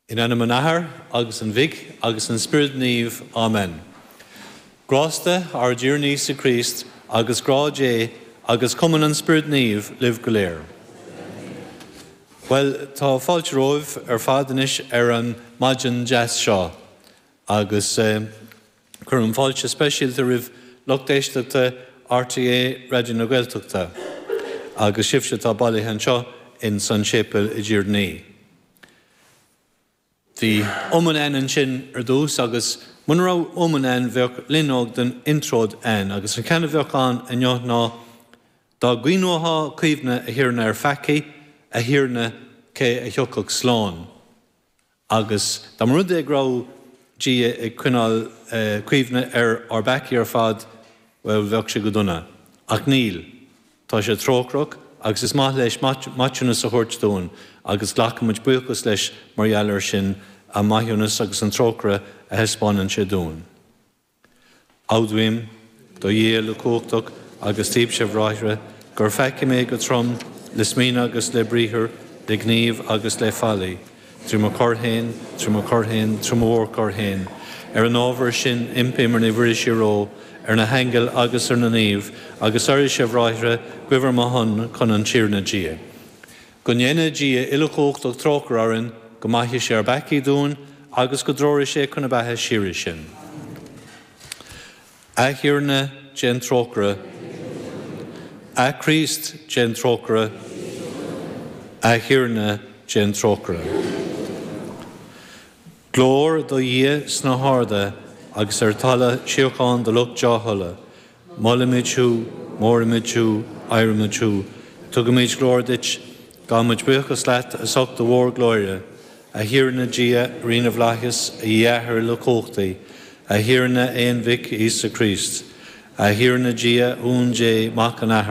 In ainm an Athar agus an Mhic agus an Spioraid Naoimh. Amen. Grásta ár dTiarna Íosa Críost agus grá Dé agus cumann an Spioraid Naoimh libh go léir. Bhuel, tá fáilte romhaibh ar fad anois ar an maidin deas seo agus. Cuirim fáilte speisialta roimh lucht éisteachta RTÉ Raidió na Gaeltachta agus sibhse atá bailithe anseo ins an séipéal i dTír Naoi. Bhí iomann ann ansin ar dtús agus muna raibh iomann ann bheadh loinneog den intreoid ann agus an ceann a bheadh ann inniu ná Dá gcoinneofá cuimhne a Thiarna ar ár bpeacaí, a Thiarna cé a thiocfadh slán? Agus dá mba rud é go raibh Dia ag coinneáil cuimhne ar ár bpeacaí ar fad, bhuel, bheadh sé go dona. Ach níl. Tá sé trócaireach agus is maith leis maithiúnas a thabhairt dúinn agus glacaimid buíochas leis mar gheall air sin, an maithiúnas agus an trócaire a thaispeánann sé dúinn. Admhaím, do Dhia uilechumhachtach agus daoibhse a bhráithre, gur pheacaigh mé go trom le smaoineamh agus le briathar, le gníomh agus le faillí, trí mo choir féin, trí mo choir féin, trí mo mhórchoir féin. Ar an ábhar sin impím ar Naomh Muire síorÓgh, ar na haingil agus ar na naoimh, agus oraibhse, a bhráithre, guí ar mo shon chun an Tiarna Dia. Go ndéana Dia uilechumhachtach trócaire orainn, go maithe sé ár bpeacaí dúinn, agus go dtreoraí sé chun na beatha síoraí sinn. A Thiarna, déan trócaire. A Chríost, déan trócaire. A Thiarna, déan trócaire. Glóir do Dhia sna harda agus ar talamh síocháin do lucht dea-thola. Molaimid thú, móraimid thú, adhraimid thú. Tugaimid glóir duit. Gabhaimid buíochas leat as ucht do mhórghlóire, a Thiarna Dia, Rí na bhflaitheas, a Dhia a Athair uilechumhachtaigh, a Thiarna Aonmhic Íosa Críost, a Thiarna Dia, a Uain Dé, a Mhic an Athar,